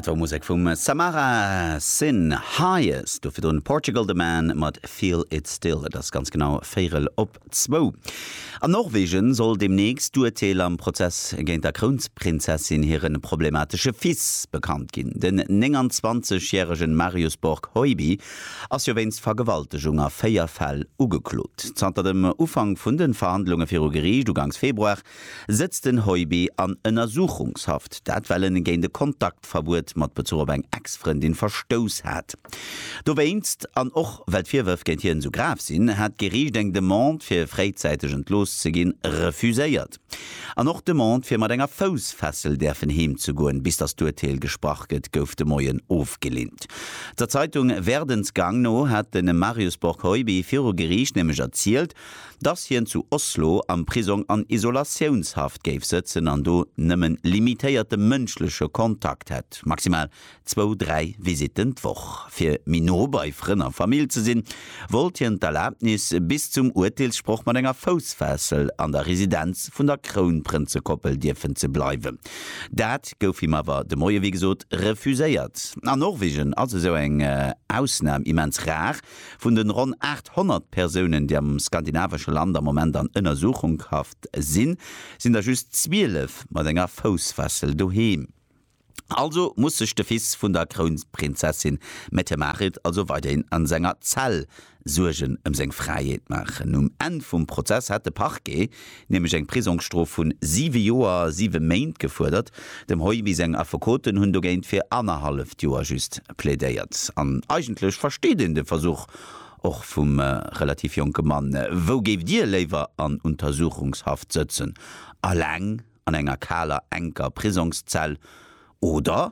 Dat war Musek vum Samara Sin Hayes, do virdrun Portugal the Man mat Feel it still. Et ass ganz genau véierel op zwou. An Norwegen soll deemnächst d'Urteel am Prozess géint der Krounsprinzessin hire problematesche Fils bekannt ginn. Den 29 järegen Marius Borg Hoiby ass jo wéinst Vergewaltegung a véier Fäll ugeklot. Zanter dem Ufank vun de Verhandlunge viru Geriicht ugangs Februar Sëtzt den Heubi an Ënnersuchungshaft, dat well en géint e Kontaktverbuet mat Bezuch op eng Ex-Frëndin verstouss hat. Dowéinst, an och well d'Virwërf géint hien esou grav sinn, hat d'Geriicht eng Demande fir fréizäiteg entlooss ze ginn, refuséiert. An och d'Demande fir mat enger Foussfessel däerfen heem ze goen, bis datt d'Urteel gesprach gëtt, gouf de Moien ofgeleent. Der Zeitung Werdens Gang no hat de Marius Borg-Heubi viru Geriicht nämlech erzielt, dass hien zu Oslo am Prisong an Isolatiounshaft géif sëtzen an do nëmmen limitéierte mënschleche Kontakt hätt, maximal zwou, dräi Visitten d'Woch. Fir méi no bei Frënn a Famill ze sinn, wollt hien d'Erlaabnis bis zum Urteelssproch mat enger Foussfessel an der Residenz vun der Krounprënzekoppel dierfen ze bleiwen. Dat gouf him awer de Moie wéi gesot refuséiert. A Norwegen ass esou eng Ausnam immens rar. Vun de ronn 800 Persounen, déi am skandinavesche Land am Moment an Ënnersuchunghaft sinn, sinn der just 12 mat enger Foussfessel doheem. Also muss sech de Fils vun der Krounprinzessin Mette-Marit also weiderhin a senger Zell Suergen ëm seng Fräiheet maachen. Um Enn vum Prozess hätt de Parquet nämlech eng Prisongsstrof vun siwe Joer a siwe Méint gefuerdert. Dem Heubi seng Affekoten hunn dogéint fir annerhalleft Joer just plädéiert. An eigentlech versteet een de Versuch och vum relativ jonke Mann. Wou géift Dir léiwer an Untersuchungshaft sëtzen, eleng an enger kaler, enker Prisongszell oder